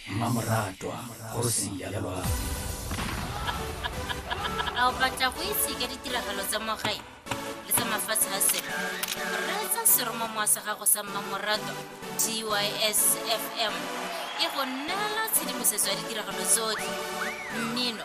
mmamoratwa kgosi ya lelwalo a o batla go itse ka ditiragalo tsa mogae le tsa mafatshe a selo reetsa seromamowa sa gago sa mmamoratwa tys fm e go neela tshedimosetso ya ditiragalo tsotlhe mmino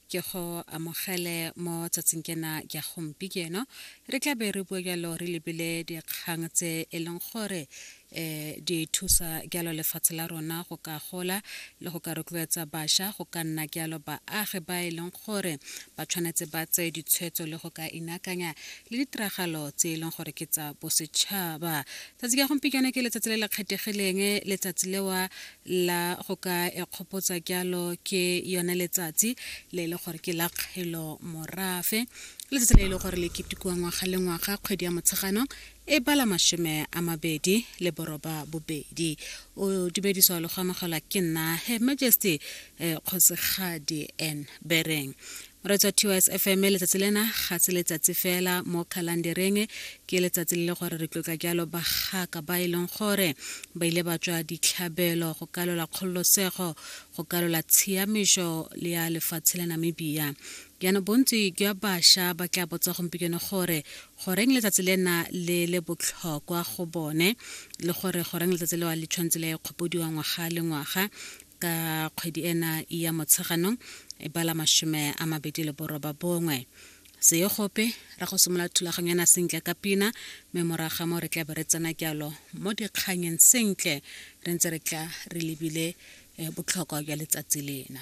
ke go amogele mo tsatsing kena ya gompieno re tla be re bua jalo re lebile dikgang tse e leng gore um di thusa jalo lefatshe la rona go ka gola le go ka rotloetsa bašwa go ka nna jalo baagi ba e leng gore ba tshwanetse ba tseye ditshwetso le go ka inakanya le ditiragalo tse e leng gore ke tsa bosetšhaba tsatsi ka gompieno ke letsatsi le le kgethegileng letsatsi lewa la go ka ekgopotsa kyalo ke yone letsatsi le e le gore ke la kgelo morafe letsatsi le e le gore le ketekiwa ngwaga le ngwaga kgwedi ya motshegano e bala mashome a mabedi le boroba bobedi o dumediswa le go amogelwa ke nna her majesty eh, kgosigadi n bereng re tswa tws fm letsatsi lena ga se letsatsi fela mo khalandereng ke letsatsi le le gore re tlotla jalo bagaka ba e leng gore ba ile ba tswa ditlhabelo go kalola kgololosego go kalola tshiamišo le ya lefatshe la namibia jaanong bontsi jwa bašwa ba tla botsa gompieno gore goreng letsatsi lena le le botlhokwa go bone le gore goreng letsatsi lewa le tshwanetse le kgopodiwa ngwaga le ngwaga ka kgwedi ena ya motsheganong e bala mashome a mabedi le boroba bongwe seye gope ra go simolola thulaganyana sentle ka pina mme moraga mo re tla be re tsena jalo mo dikganyeng sentle re ntse re tla re lebile eh, botlhokwa jwa letsatsi lena